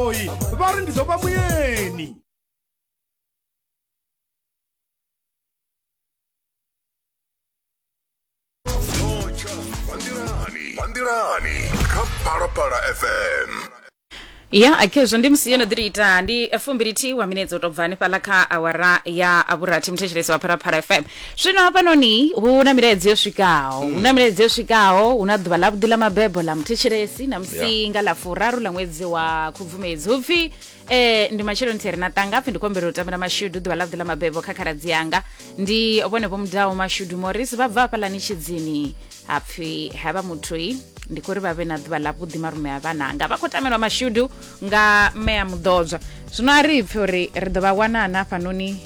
goloi vha ri ndi ḓo vha muyeni nḓilani kha phalaphala fm ya akhezwo ndi musi yo no ḓiri ita ndi fumbilithihi wa minetse u tou bva hanefhaḽa kha awara ya vhurathi muthetshelesi wa pharaphala fm zwino hafhanoni hu na milaedza yo swikaho hu na milaedza yo swikaho hu na ḓuvha ḽavhuḓi ḽa mabebo ḽa muthetshelesi na musi nga ḽa furaru ḽa ṅwedzi wa khubvumedzi hu pfi eh, ndi matsheloni theri na tanga pfi ndi kombela u tambela mashudu ḓuvha ḽavhuḓi ḽa mabebo kha khaladzi yanga ndi vhone vho mudaho mashudu moris vha bva hafhaḽani tshidzini ha pfi havha muthoi ndi khou ri vha vhe na ḓuvha ḽavhuḓi marume a vhananga vha khou tamelwa mashudu nga mme a muḓodzwa zwino a ri pfi uri ri ḓo vha wanana hafhanoni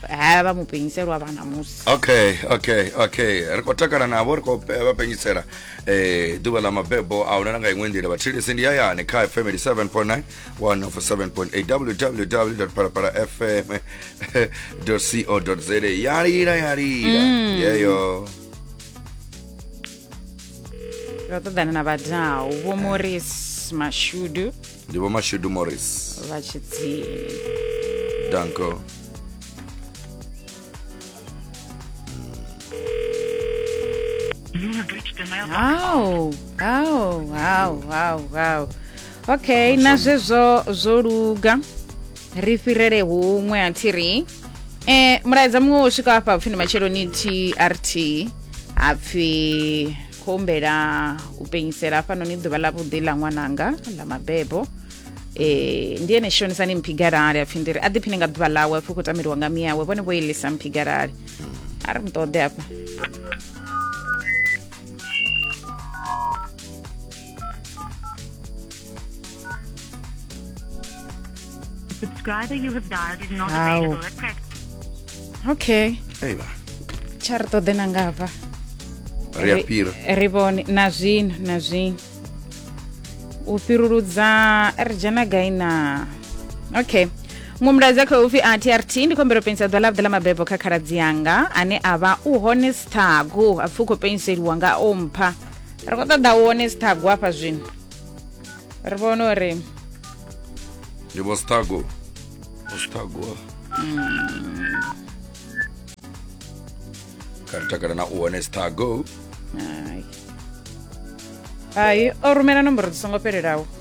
ha vha mu penyiselwa vhana musi okay okay okay ri khou takala navho ri khou pe- vha penyisela eh ḓuvha ḽa mabebo a huna na nga iṅwe nḓila vhathilisi ndi hayani kha fm 87.9 147.8 www parapara fm co za ya lila ya lila yeyo ro ṱoḓana na vhadau vho moris mashudu ndi vho mashudu morris vha tshidzini danko hau hau hau hau hau okay na zwezwo zwo luga ri fhirele huṅwe a thi ri um mulaedza muṅwe wo swika hafha hapfi ndi matsheloni trt hapfi khou humbela u penyisela hafhanoni ḓuvha ḽa vhuḓi ḽa ṅwananga ḽa mabebo eh ndi ene shonisani mphigarali apfhi ndiri a ḓiphine nga ḓuvha ḽawe apfhi u khou tameliwa nga miyawe vhone vho ilisa mphigarali a ri muṱoḓe hafha Subscriber you have dialed is not Au. available at present. okay aiwa tsha ri ṱoḓe na ngafha ri a fhira ri vhone na zwino na zwino u fhiruludza ri dzhena gai na okay muṅwe mulaedza kha upfi a trt ndi khombelo penisa ḓuvha ḽavhuḓi ḽa mabebo kha khaladzi yanga ane a vha u hone sthagu a pfi u khou peniseliwa nga ompha ri khou ṱoḓa u wone sithago hafha zwino ri vhone uri ndi vho sithago vho sithago kha ri takala na u wone sithago hai o rumela nomboro dzi songo fhelelaho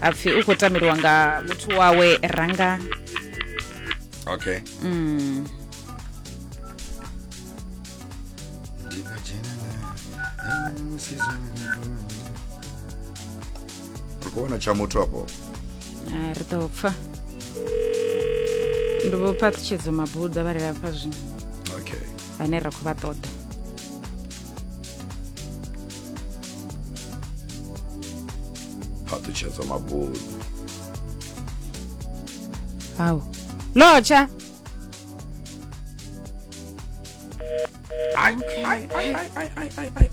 apfi u khou tameliwa nga muthu wawe ranga okay mm. kuona tsha muthu apo ah, ri ḓo pfa ndi vho phaṱhutshedzo mabuḓa vha rela pfa zwino okay vhane ra khou vha ṱoḓa phaṱutshedzwa mabundu hawu lotsha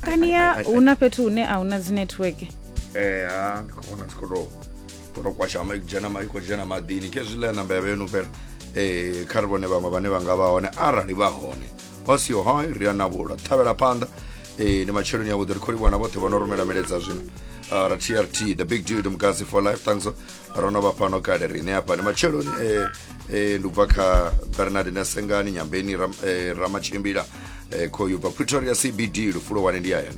kaniya hu na fhethu hune a hu na dzi network Eh, ha ndi khou vhona dzi khou tou khou tou kwasha ma- dzhena ma- i khou dzhena maḓini khezwi ḽa namba ya vhenu fhela um kha ri vhone vhaṅwe vhane vha nga vha hone arali vha hone hosi yo hai ri a navhula ṱhavhela phanḓa eh, ni matsheloni avhuḓi ri khou livhuwa na vhoṱhe vho no rumela miledza zwino Ah, ra trt the big dude mukasi for life thanks ro no vha fhano kale riṋe hafha ni matsheloni eh, eh, ndi ubva kha bernard nasengani nyambeni Ram- eh, ramatshimbila eh, khoyu bva pretoria cbd lufulo wane ndi hayani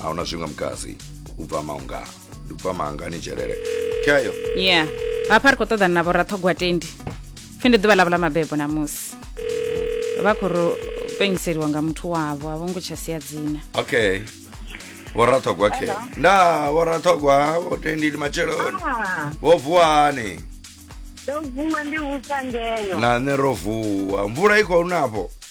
a huna zwiṅwe mukasi u bva maunga ndi bva maanga ni dzhelele khayo ya hafha ri khou ṱoḓana na vhoraṱhogwa tendi pfhi ndi ḓuvha ḽavho ḽa mabebo ṋamusi vha khou ri penyiseliwa nga muthu wavho a vho ngo tsha sia dzina okay vhoraṱhogwa khe nda vhoraṱhogwa vho tendi ndi matsheloni Ah, vho vuwani ndo vuwa ndi vhupfa ngeyo na nṋe ro vuwa mvula i khou nafho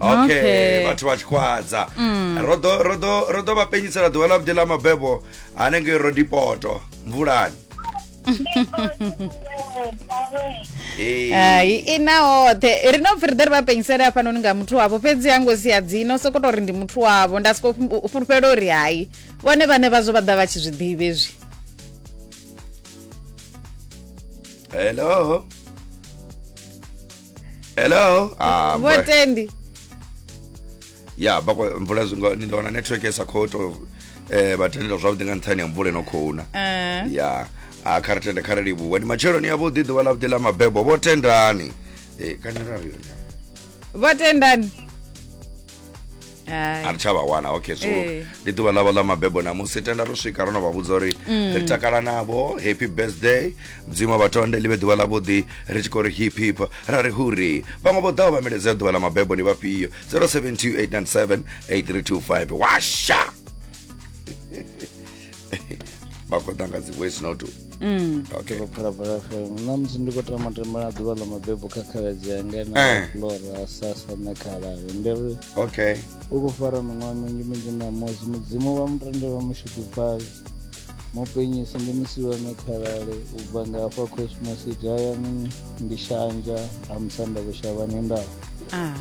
okay Okay. vhathu vha tshikhwadza ro ḓo- ro ḓo- ro ḓo vha penyisela ḓuvha ḽa vhuḓi ḽa mabebo hanengei rodipoto mvulani Ee. hai i na hoṱhe ri no pfi ri ḓe ri vha penyisele hafhanoni nga muthu wavho fhedzi ha ngo sia dzino soko tou ri ndi muthu wavho nda soko fhu- fhulufhela uri hai vhone vhane vhazwo vha ḓa vha tshi zwi ḓivhi ezwi hello hello ah, boy. votendi ya bakwa mvula zwingo ndi wana network isa khou to eh vhatendela zwavhuḓi nga nṱhani ya mvula ino khou na Eh, ya a kha ri tende kha ri livhuwe ndi matsheloni yavhuḓi ḓuvha ḽa vhuḓi ḽa mabebo vho tendani Eh, kani ra ri yone votendani a ri tsha vha wana okay so eh. ndi ḓuvha ḽavho ḽa mabebo namusi tenda ro swika ro no vha vhudza uri mm. ri takala navho happy birthday mudzimu vhatonde ḽi vhe ḓuvha ḽavhuḓi ri tshi khou ri hip hip ra ri huri vhaṅwe vho ḓaho vha miledzea ḓuvha ḽa mabebo ndi vhafhio 0728978325 washa vha khou ḓa nga dzi voice note mm. okay. phalaphala fm na musi ndi khou tama tembela ḓuvha ḽa mabebo kha khaladzi yanga na eh. flora sasa na khalalo ndi ri okay u khou fara miṅwaha minzhi minzhi na mosi mudzimu vha mutende vha mushudufhali mupenyisi ndi musiwa na khalale u bva nga hafha cosmositi hayani ndi shanja ha musanda vhushavhani ndao ah.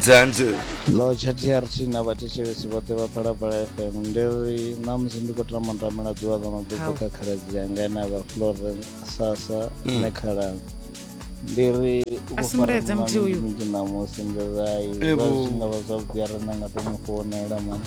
dzanzi lotsha trt na vhathetshelesi vhoṱhe vha phalaphala fm ndi ri ṋamusi ndi khou tama ndamela ḓuvha ḽa mabebo kha khaladzi yanga ene a vha floren sasa mm. ne khalanga ndi ri ufaraaminzhi ṋamusi ndi rai zwa zwi nga vha zwavhuḓi a re na nga to mu founela mani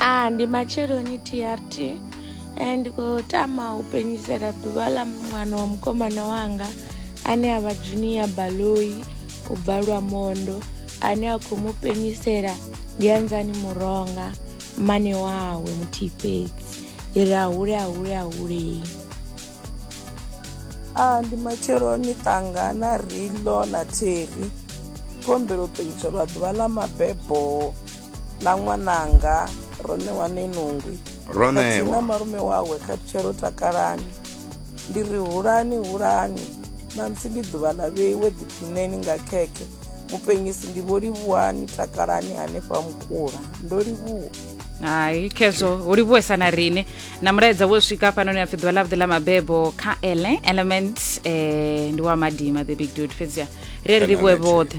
ah ndi matsheloni trt eh, ndi khou tama u penyisela ḓuvha ḽa ṅwana wa mukomana wanga ane a vha junior baloi u bva lwamondo ane a khou mu penyisela ndi anzani muronga mmane wawe muthihi fhedzi ndi ri ahule ahule ahulei a ndi matsheloni ṱanga na rilo na theri kombelo penyiswa lwa ḓuvha ḽa mabebo na ṅwananga ro ṋewa nenungwi na malume wawe khathutshe ro takalani ndi ri hulani hulani ṋamusi ndi ḓuvha ḽa vheiwe ḓiphineni nga khekhe mupenyisi ndi vho livhuwani takalani hanefha mukula ndo livhuwa hai khezwo hu livhuwesa na riṋe na mulaedza wo swika hafhanoni apfi ḓuvha ḽavhuḓi ḽa mabebo kha ele element um ndi wa madima the big dud fhedzia ri ri livhuwe vhoṱhe